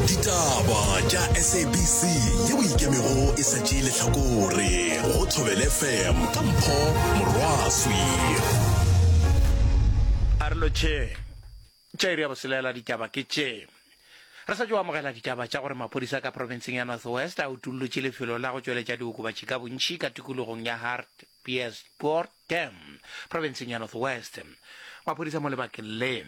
ditaba tša sabc ye o ikemego e sa tšeye lehlakore go thobele fm ka mpho morwaswi a re lotšhe tša iri ya boselela ditaba ke tše re sa tšo amogela ditaba tša gore maphodisa ka profenseng ya north west a utullotše lefelo la go tšweletša diokobatši ka bontšhi ka tikologong ya hart piersport dam profenseng ya north west maphodisa mo lebakeng le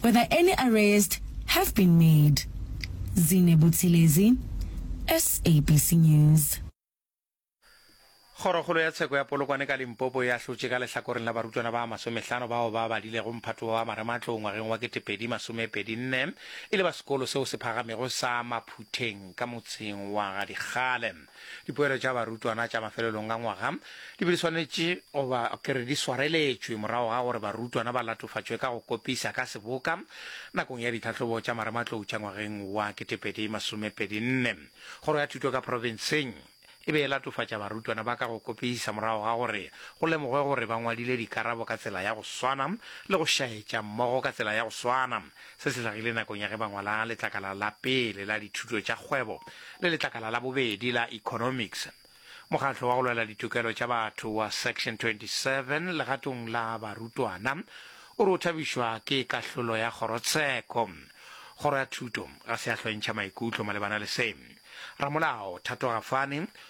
Whether any arrest have been made. Zine Buthelezi, SABC News. Kgorokgolo ya tsheko ya Polokwane ka Limpopo e ahlotše ka lehlakoreng la barutwana ba masomehlano bao ba badilego mphato wa marematlou ngwageng wa ketepedi masomepedi nne e le ba sekolo seo se phagamego sa Maphutheng ka motseng wa ga Dikgale. Dipoelo tša barutwana tša mafelelong a ngwaga di be di swanetše goba ke re di swareletšwe morago ga gore barutwana ba latofatšwe ka go kopisa ka seboka nakong ya ditlhahlobo tša marematlou tša ngwageng wa 2024. Kgoro ya Thuto ka Profenseng e be e latofatša barutwana ba ka go kopisa morago ga gore go lemogwe gore ba ngwadile dikarabo ka tsela ya go swana le go šaetša mmogo ka tsela ya go swana Se se hlagile nakong ya ge ba ngwala letlakala la pele la dithuto tša kgwebo le letlakala la bobedi la economics. Mokgatlo wa go lwela ditokelo tša batho wa Section 27 legatong la barutwana o re o thabišwa ke kahlolo ya kgorotsheko. Kgoro ya thuto ga se ya hlwentšha maikutlo malebana le se. Ramolao Thato Gafane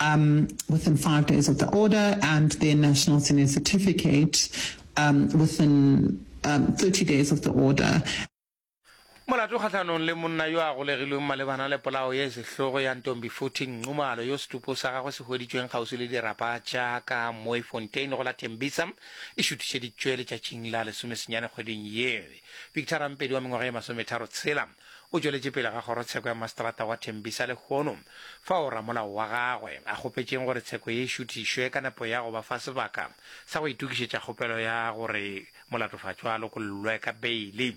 um, within five days of the order and their national senior certificate um, within um, 30 days of the order. molato kgatlhanong le monna yo a golegilweng malebana le polao ya sehlogo ya ntombi footing nxumalo yo setupo sa gagwe se hweditšweng kgauswi le dirapa tša ka moy fontain go la tembisa e šuthišeditšwe letšatšing la lesomesenyane kgweding ye victor rampedi wa mengwaga ye masometharo tshela O tšweletše pele ga kgorotsheko ya maseterata wa Tembisa lehono fao ramolao wa gagwe a kgopetšeng gore tsheko ye e šuthišwe ka nepo ya go ba fa sebaka sa go itokišetša kgopelo ya gore molatofatšwa a lokollwe ka beili.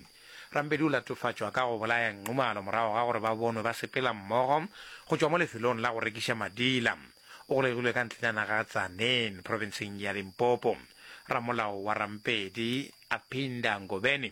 Rampedi o latofatšwa ka go bolaya Nxumalo morago ga gore ba bonwe ba sepela mmogo go tšwa mo lefelong la go rekiša madila. O golegilwe ka ntlenyana ga Tzaneen, profenseng ya Limpopo. Ramolao wa Rampedi, Aphinda Ngobeni,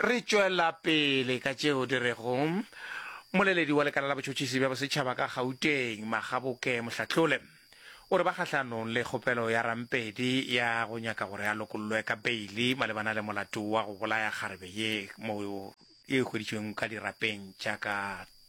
re tšwela pele ka tšeo di rego moleledi wa lekala la botšhotšhisi bja bosetšhaba ka gauteng magaboke mohlatlole o re ba kgahlanong le kgopelo ya rampedi ya go nyaka gore a lokollwe ka beili malebana le molato wa go bolaya kgarebe ye moo e hweditšweng ka dirapeng tša ka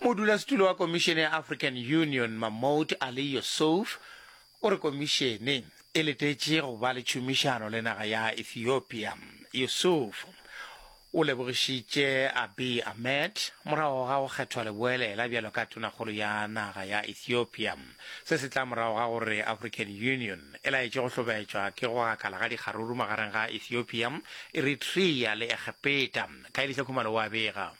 Modulasetulo wa Komišene ya African Union, Mahmoud Ali Youssouf, o re komišene e letetše go ba le tšhomišano le naga ya Ethiopia. Youssouf o lebogišitše Abiy Ahmed morago ga go kgethwa leboelela bjalo ka tonakgolo ya naga ya Ethiopia. Se se tla morago ga gore African Union e laetše go hlobetšwa ke go gakala ga dikgaruru magareng ga Ethiopia, Eritrea le Egepeta, Kaelihle Khumalo o a bega.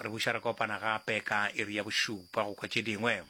Re buša re kopana gape ka iri ya bošupa go kwa tše dingwe.